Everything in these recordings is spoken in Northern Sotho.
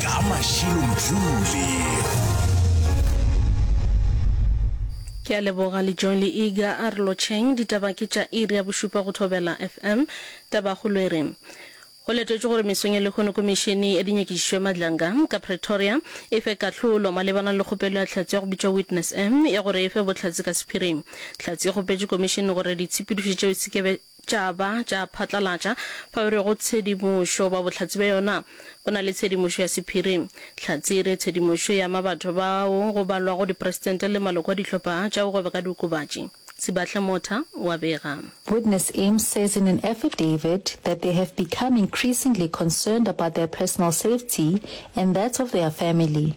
ka Mashilo Mjuli. Ke a leboga le Joy le Iga a re lotšheng. Ditaba ke tša iri ya bošupa go Thobela FM. Tabakgolo e re, Go letetšwe gore mesong ya lehono Komišene ya Dinyakišišo ya Madlanga ka Pretoria e fe kahlolo malebana le kgopelo ya Tlhatse ya go bitšwa Witness M ya gore e fe bohlatse ka sephiring. Tlhatse e kgopetše Komišene gore ditshepedišo tšeo e se ke be tša ba tša phatlalatša bao e rego tshedimošo ba bohlatse bja yona go na le tshedimošo ya sephiri. Hlatse e re tshedimošo e ama batho bao go balwago dipresidente le maloko a dihlopha tša go gweba ka diokobatši. Sibahle Motha o a bega. Witness Im says in an affidavit that they have become increasingly concerned about their personal safety and that of their family.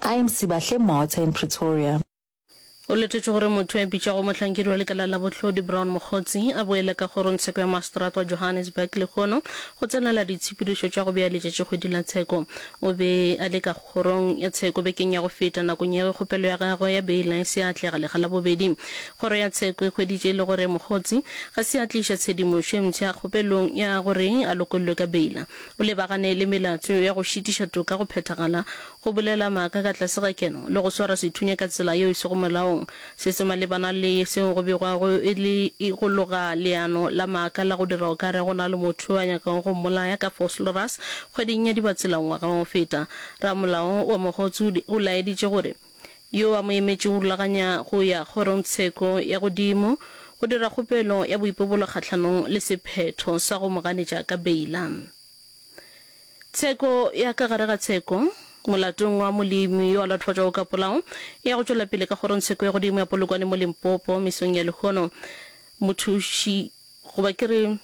I am Sibahle Mota in Pretoria. Go letetšwe gore motho yo a bitšwago mohlankedi wa lekala la bohlodi Brown Mokgotsi a boele ka kgorongtsheko ya maseterata wa Johannesburg lehono go tsenela ditshepedišo tša go bea letšatši kgwedi la tsheko. O be a le ka kgorong ya tsheko bekeng ya go feta nakong ya ge kgopelo ya gagwe ya beila e se atlega lega la bobedi. Kgoro ya tsheko e hweditše e le gore Mokgotsi ga se a tliša tshedimošo e mpsha kgopelong ya gore a lokollwe ka beila. O lebagane le melato ya go šitiša toka go phethagala Go bolela maaka ka tlase ga keno le go swara sethunya ka tsela yeo e sego molaong, se se malebana le seo go begwago e le go loga leano la maaka la go dira o ka re go na le motho yo a nyakago go mmolaya ka fosloras kgweding ya Dibatsela ngwaga wa go feta. Ramolao wa Mogotsude o laeditše gore yo a mo emetšego o rulaganya go ya kgorongtsheko ya godimo go dira kgopelo ya boipobolo kgahlanong le sephetho sa go mo ganetša ka beila. Tsheko ya ka gare ga tsheko, Molatong wa Molemi yo a latofatšwago ka polao e ya go tšwela pele ka Kgorongtsheko ya Godimo ya Polokwane mo Limpopo mesong ya lehono. Mothuši, goba ke re,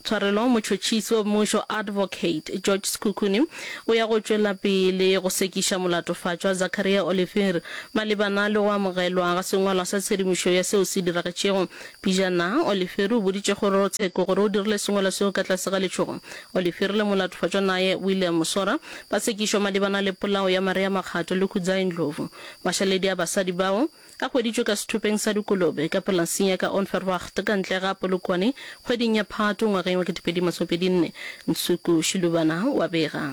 tshwarelo, motšhotšhisi wa mmušo Advocate George Sekhukhune o ya go tšwela pele go sekiša molatofatšwa Zacharia Oliphir malebana le go amogelwa ga sengwalwa sa tshedimošo ya seo se diragetšego. Pejana, Oliphir o boditše Kgorotsheko gore o dirile sengwalwa seo ka tlase ga letšhogo Olifieri le molatofatšwa naye William Musora ba tsekišwa malebana le polao ya Maria Makgato le Khudzai Ndlovu. Mašaledi a basadi bao a hweditšwe ka sethopeng sa dikolobe ka polasing ya ka Onverwacht ka ntle ga Polokwane kgweding ya Phato ngwageng wa 2024, Ntshuku Shilubana wa bega.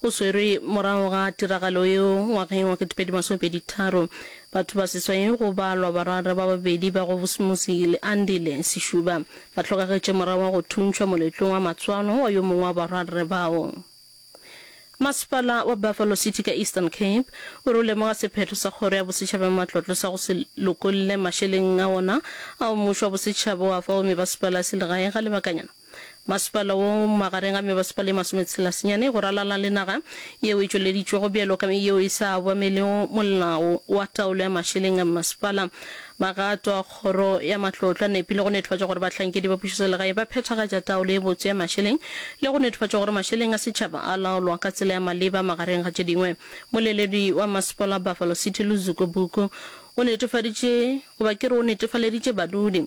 O swerwe morago ga tiragalo yeo ngwageng wa ketepedi masome pedi tharo. Batho ba seswai go ba lwa barara ba babedi ba go Busumusi le Andile Sishuba ba hlokagetše morago ga go thuntšhwa moletlong wa matswalo wa yo mongwe wa bararre bao. Masepala wa Buffalo City ka Eastern Cape o re o lemoga sephetho sa Kgoro ya Bosetšhaba ya Matlotlo sa go se lokolle mašeleng a wona ao mmušo wa bosetšhaba o a fa bomebasepala a selegae ga lebakanyana. Masepala wo magareng ga mebasepala e masometshela senyane go ralala le naga yeo e tšweleditšwego bjalo ka yeo e sa obamelego molao wa taolo ya mašeleng a mmasepala. Magato a Kgoro ya Matlotlo a nepile go nethofatša gore bahlankedi ba pušoselegae ba phethagatša taolo e botse ya mašeleng le go nethofatša gore mašeleng a setšhaba a laolwa ka tsela ya maleba magareng ga tše dingwe. Moleledi wa Mmasepala wa Buffalo City Luzuko Buku o netefaditše, goba ke re o netefaleditše badudi,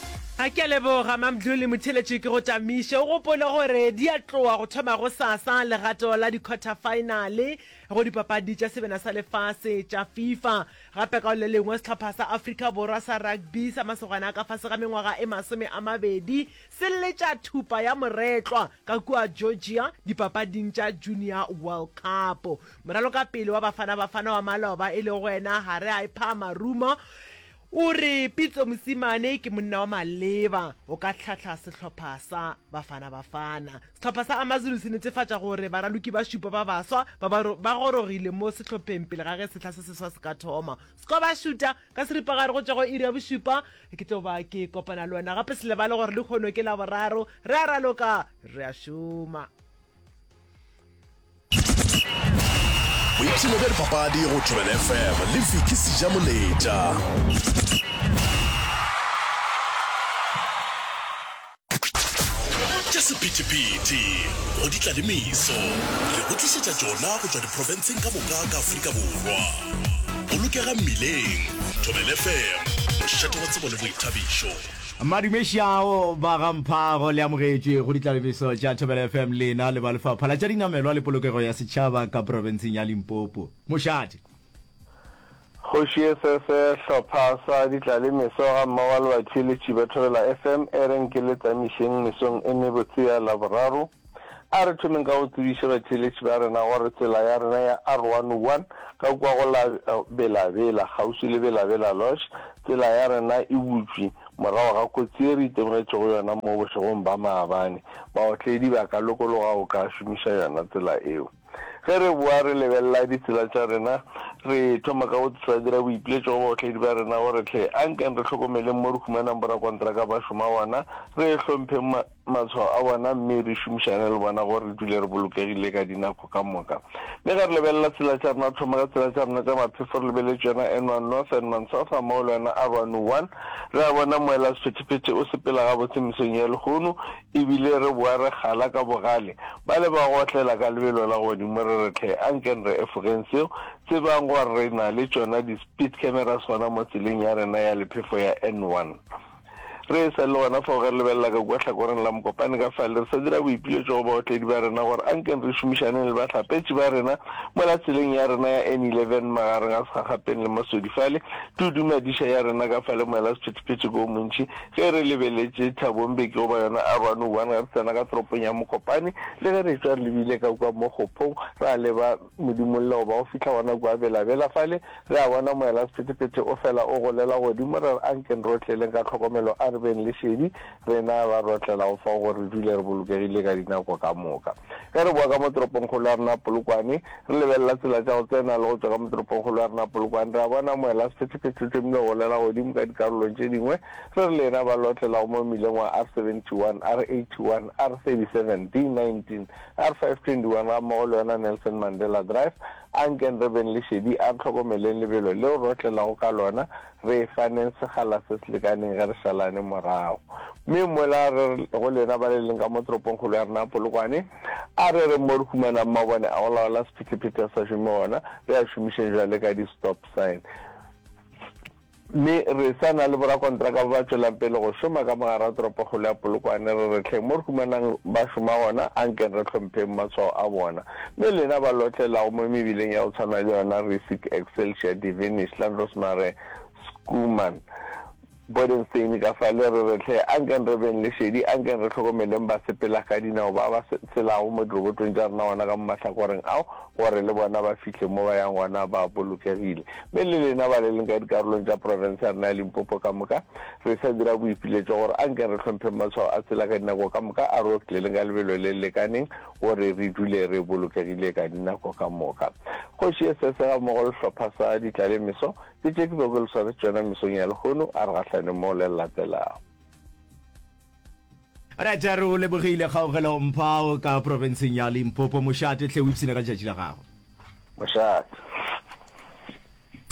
A ke a leboga, Mamdluli Motheleci, ke go tamiše o gopole gore di a tloa go thoma gosasa legato la dikhwathafaenale go dipapadi tša sebena sa lefase tša Fifa. Gape ka go le lengwe sehlopha sa Afrika Borwa sa rugby sa masogana a ka fase ga mengwaga e masome a mabedi se letša thupa ya moretlwa ka kua Georgia dipapading tša Junior World Cup. Moralokapele wa Bafana Bafana wa maloba e lego wena Hare Aiphaa Maruma O re, Pitso Mosimane ke monna wa maleba go ka hlahla sehlopha sa Bafana Bafana. Sehlopha sa AmaZulu se netefatša gore baraloki ba šupa ba baswa ba ba ba gorogile mo sehlopheng pele ga ge sehla se seswa se ka thoma. Skobašuta, Ka seripagare go tšwa go iri ya bošupa ke tlo ba ke kopana le wena gape. Se lebale gore lehono ke Laboraro, re a raloka, re a šoma. boipshino bja dipapadi go tswelele fm le viki seja moletša ke sephethephethe go di tlalemiso re go tlišetša tšona go tšwa diprofenseng ka moka ka aforika borwa bolokega mmileng thobelefm mošate wa tsebo le boithabišo Madume Shao ba ga Mphago le amogetšwe go ditlalebiso tša Thobela FM lena le ba Lefapha la tša Dinamelwa le Polokego ya Setšhaba ka profenseng ya Limpopo. Mošate. Kgoši e fe fe hlopha sa ditlalemeso ga mmogo le batheeletši ba Thobela FM e reng ke le tsamišeng mesong e mebotse ya Laboraro. A re thomeng ka go tsebiša batheeletši ba rena gore tsela ya rena ya R101 ka kua go la Bela Bela, kgauswi le Bela Bela Lodge, tsela ya rena e butšwe morago ga kotsi ye re itemogetšego yona mo bošegong ba maabane. Baotledi ba ka lokologa go ka šomiša yona tsela eo. Ge re boa re lebelela ditsela tša rena, re thoma ka go sa dira boipiletšo go baotledi ba rena gore hle a nkeng re hlokomeleng mo re humanang borakontraka ba šoma gona, re hlompheng matshwao a bona mme re šomišane le bona gore re dule re bolokegile ka dinako ka moka. Mme ge re lebelela tsela tša rena, thoma ka tsela tša rena tša maphefo, re lebeletše yona N1 North, N1 South gammogo le yona R101, re a bona moela sephethephethe o sepela gabotse mesong ya lehono e bile re boa re kgala ka bogale. Ba le ba go otlela ka lebelo la godimo re re tlhe, a nkeng re efogeng seo, tsebang gore re na le tšona di-speed cameras gona mo tseleng ya rena ya lephefo ya N1. Re e sa le gona fao ge re lebelela ka kua hlakoreng la mokopane ka fale, re sa dira boipiletšo go baotledi ba rena gore a nkeng re šomišaneng le bahlapetši ba rena mola tseleng ya rena ya N11 magareng a Segagapeng le Maswedi fale, tudu madiša ya rena ka fale moela sephethephethe ke o montši ge re lebeletše Thabo Mbeki goba yona Arwani One ge re tsena ka toropong ya Mokopane le ge re etšwa re lebile ka kua mo Kgophong ra leba Modimo lle o ba o fihla gona kua belabela fale, re a bona Moelasephethephethe o fela o golela godimo, ra re, Ankeng re otleleng ka tlhokomelo a re beng le šedi, rena ba re otlelago fao gore re dule re bolokegile ka dinako ka moka. Ge re boa ka mo toropongkgolo ya rena Polokwane, re lebelela tsela tša go tsena le go tšwa ka mo toropongkgolo ya rena Polokwane, re a bona Moelasephethephethe o thomile go golela godimo ka dikarolong tše dingwe, re re, Lena ba le otlelago mo mmileng wa R71, R81, R30, 17, 19, R521 gammogo le yona Nelson Mandela Drive, A nkeng re beng le šedi, a re hlokomeleng lebelo leo re otlelago ka lona, re e faneng sekgala se se lekaneng ge re šalane morago. Mme mola re re go lena ba le leng ka mo toropongkgolo ya rena ya Polokwane, a re reng mo re humanang mabone a go laola sephetephete a sa šome gona, re a šomišeng bjale ka di-stop sign. Mme re sa na le borakontraka ba ba tšwelang pele go šoma ka mo gare ga toropokgolo ya Polokwane, re re hleng mo re humanang ba šoma gona, a nkeng re hlompheng matshwao a bona. Mme lena ba lotlelago mo mebileng ya go tshwana le yona Riesig, Excelsior, Devenish, Landrosmare, Schoeman, Bodenstein ka fale, re re hle, a nkeng re beng le šedi, a nkeng re hlokomeleng basepelakadinao ba ba tshelago mo dirobotong tša rena gona ka mo mahlakoreng ao, gore le bona ba fihle mo ba yang gona ba bolokegile. Mme le lena ba le leng ka dikarolong tša profense ya rena ya Limpopo ka moka, re sa dira boipiletšo gore a nke re hlompheng matshwao a tsela ka dinako ka moka a road clearing ka lebelo le le lekaneng gore re dule re bolokegile ka dinako ka moka. Kgoši ye Sese ga mmogo le sehlopha sa ditlale meso ke tše ke bego ke le swaretše tšona mesong ya lehono, a re gahlaneng mo le le latelago. Alright, re o lebogile kgaogelo mphao ka profenseng ya Limpopo. Mošate tle o ipsine ka letšatši la gago. Mošate.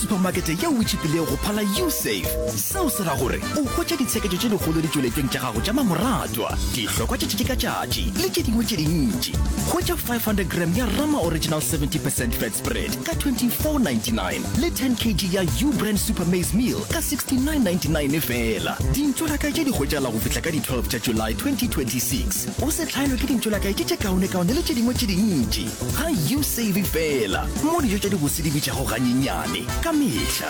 Supamakete yeo e tšhipilego go phala Usafe. Seo se ra gore o hwetša ditsheketšo tše dikgolo ditšweletšeng tša gago tša mamoratwa, dihlokwa tša tšatši ka tšatši le tše dingwe tše dintši. Hwetša 500 gram ya Rama Original 70 percent fat spread ka 24.99. le 10 kg ya u brand super maize meal ka 69.99 fela dintšo la kae tše di hwetšala go fihla ka di 12 tša july 2026 o se hlaelwe ke dintšo la kae tše tše kaonekaone le tše dingwe tše dintši ga u save fela mo dijo tša dibose di bitšago ganyenyane ka mehla